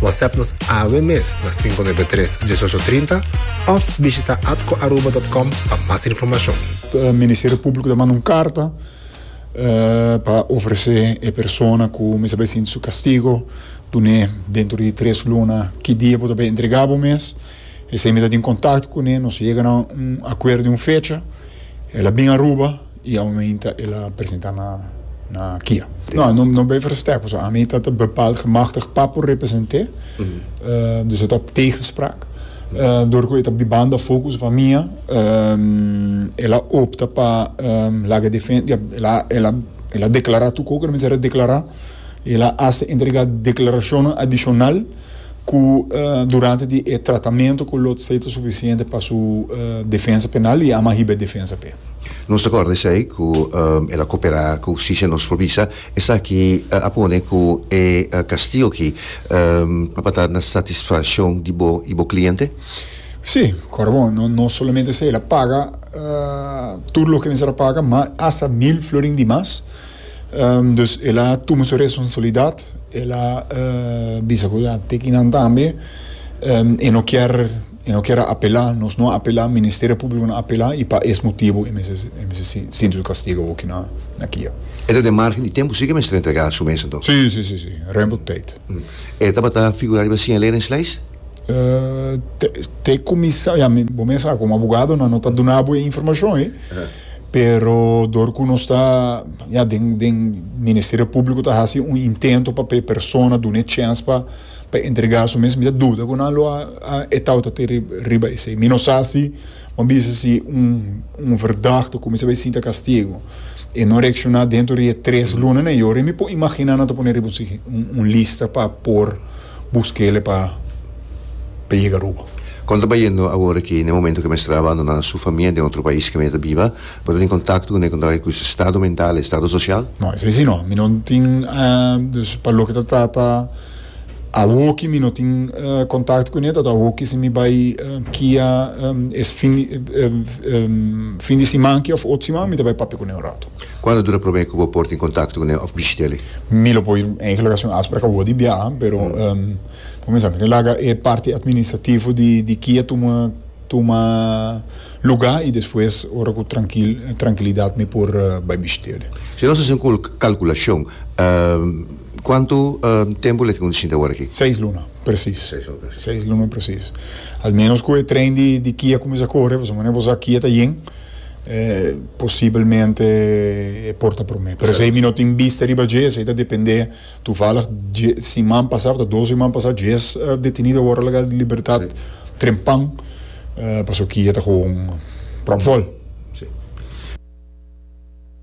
WhatsApp nos awe mes na 593 1830 of bishita atcoaruba.com pa mas informacion. Eh, Ministerio Público ta manda un carta eh, pa ofrece e persona cu mester bay sinti su castigo, dun'e dentro di tres luna ki dia bo ta bay entrega bo mes. Esey mi ta tin contacto cun'e, nos yega na un acuerdo di un fecha, el a bin Aruba. I aumenta el a presenta na na kia. No, no no ben versterk, paso ami ta ta bepaald gemachtigd pa por represente, dus e ta op tegenspraak. Door ku e ta bibanda focus van mia, el a opta pa laga defen, ja, el a el a el a declara tu cu cu ta mester a declara, el a hace entrega declaracionnan adicional. ku durante di e tratamentu ku lo tsei ta sufisiente pa su defensa penal i ama hiba e defensa p'e. Nos ta kòrda esei ku el a koperá ku hustisia. Nos por bisa esaki a pone ku e kastigu aki tabata na satisfakshon di bo i bo kliente? Sí, kòrda bon, no solamente esei, el a paga tur loke mester a paga, má asta mil florin di mas. Dus el a tuma su responsabilidat, el a bisa ku a tiki nan tambe e no kier e no kier a apelá, nos no a apelá, Ministerio Públiko no a apelá i pa es motibu e mester e mester sinti su kastigu aki na na kia. E ta den margen di tempu si ke mester entregá su mes anto? Si, si, si, si, remte op tèit. E tabata figurá riba siñalera en slijs? Te te kuminsá, ya, mi bo mes sa ku un abogado no no ta duna bo e informashon ei. pero dor ku nos ta ya den den ministerio públiko ta hasi un intento pa e persona duna e chèns pa pa entregá su mes mi ta duda ku nan lo a a e tautatin riba riba esei mi no sa si bo a bisa si un un verdad ta kuminsá bai sinta kastigu e no reakshoná dentro di e tres lunanan i ora mi por imaginá nan ta pone riba un un lista pa por Bus kele pa pa yega Aruba. Kon ta bayendo awor aki? Na e momento ke mester a abandoná su famia den otro pais ke mi ta biba, bo ta tin kontakto ku nekon ta ha'i ku su estado mental, estado sosial? No, esei si no. Mi no tin, dus pa loke ta trata awor ki mi no tin kontakto kuné, tabata awor ki si mi bai kia e fin di siman ki òf otro siman mi ta bai papia kuné un ratu. Cuando dura prome cu bo por tin contacto cu ne of bishiteli? Mi lo por eigenlijk haci un afspraak awor di biaha, pero pa cuminsa mi tin laga e parti administrativo di di kia tuma tuma luga y despues ora cu trankil trankilidad mi por bay bishiteli. Si nos haci un cul calculacion cuanto tempo le tin cu tin shinta awor aki? Seis luna precies. Seis luna precies. Seis luna precies. Al menos cu e train di di kia cuminsa corre, pasobra bo sa kia ta yen. Posibelmente e por ta prome. Pero esei mi no tin bista riba dje, esei ta depende. Tuvalig dje siman pasa, of ta dos siman pasa, djes detenido a wòrdu laga di libertat trempan, pasobra ki e ta gewoon pròp vòl.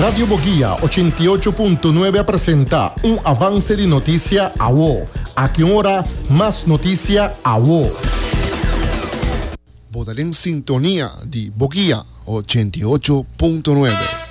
Radio Boguia ochenta i ocho punto nuebe a presenta un avance di notisia awo. Aki un ora mas notisia awo. Bo ta den sintonia di Boguia ochenta i ocho punto nuebe.